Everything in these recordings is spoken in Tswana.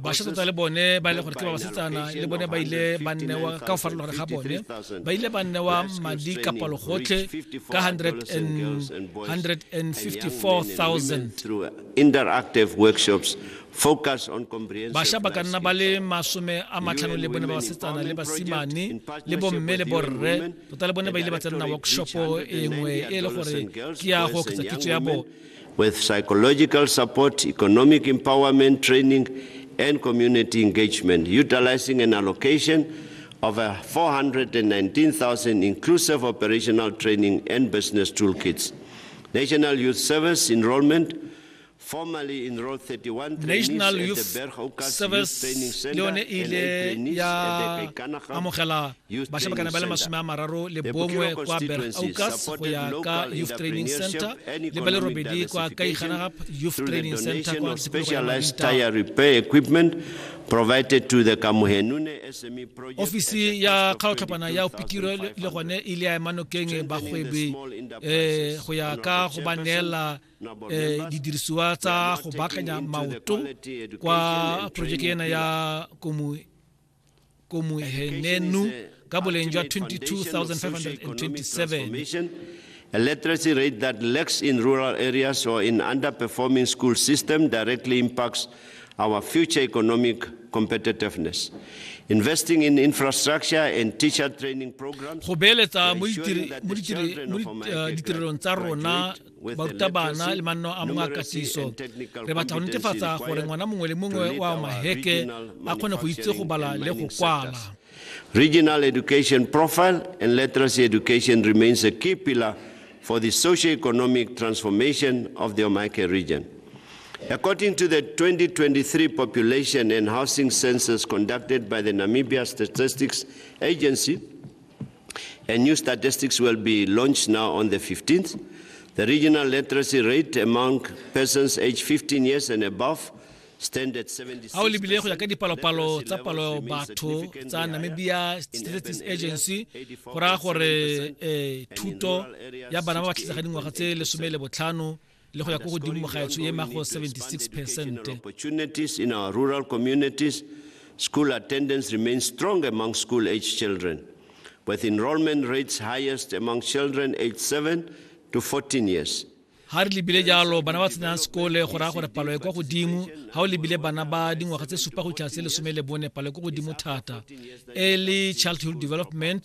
bašwa tota le bone ba e le gore ke ba basetsana le bone ba ile ba nnewa ka go farologana ga bone ba ile ba nnewa madi ka palogotlhe ka 154,000 focus on comprehensive basha ba ka nna ba le masome a matlhano le bone ba basetsana le basimane le bomme le borre tota le bone ba ile ba tsenna workshopo e nngwe e le gore ke ya go oketsa kitso ya bone with psychological support, economic empowerment training, and community engagement, utilizing an allocation of 419,000 inclusive operational training and business toolkits. National Youth Service enrollment National Youth Service le yone e ile ya amogela bašwa ba kana ba le masome a mararo le bongwe kwa bergaukas go ya ka youth training center le ba le robedi kwa kaiganagap youth training center kwa specialized tire repair equipment provided to the Kamuhenune SME project. Ofisi ya kgaotlhapana ya opitiro le gone e le ya emanokeng bagwebi eh, go ya ka go ba neela eh, didirisiwa tsa go baakanya maoto kwa projeke ena ya komuhenenu ka boleng jwa 22527 A literacy rate that lacks in rural areas or in underperforming school system directly impacts our future economic competitiveness. Investing in infrastructure and teacher training programs. Go beeletsa mo uh, ditirelong tsa rona barutabana le manno a mongwe a katiso re batla go netefatsa gore ngwana mongwe le mongwe wa maheke a kgone go itse go bala le go kwala Regional education profile and literacy education remains a key pillar for the socio-economic transformation of the Omake region. According to the 2023 population and housing census conducted by the Namibia Statistics Agency, A new statistics will be launched now on the 15th. The regional literacy rate among persons aged 15 years and above ga o lebile go ya ka dipalopalo tsa palo batho tsa namibia statistics agency go raya gore um thuto ya bana ba ba tlhatlhaga dingwaga tse lesome le botlhano le go ya ko godimo gaetsho e mago 76 percent opportunities in our rural communities school attendance remains strong among school age children with enrollment rates highest among children aged 7 to 14 years ga re lebile jalo bana ba tsenang sekole go raya gore palo e kwa godimo ga o lebile bana ba dingwaga tse supa go tlhase lesome le bone palo e kwa godimo thata early childhood development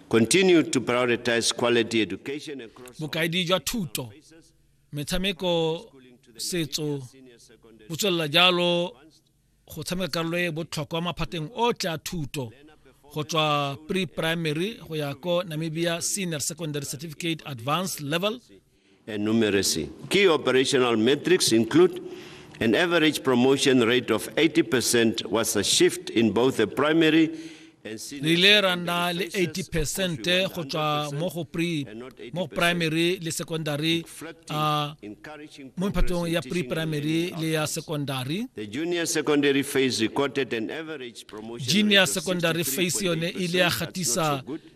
Continue to prioritize quality education across Bokaedi jwa thuto, metshameko, setso bo tswelela jalo go tshameka karolo e botlhokwa maphateng otlhe a thuto go tswa pre-primary go ya ko Namibia Senior Secondary Certificate Advanced Level and numeracy. Key operational metrics include an average promotion rate of 80% was a shift in both the primary re ile ra nna le 80 percent go tswa mo go pre mo primary le secondary uh, mo phatong ya pre primary le ya secondary the junior secondary phase recorded an average promotion junior secondary phase yone ile ya gatisa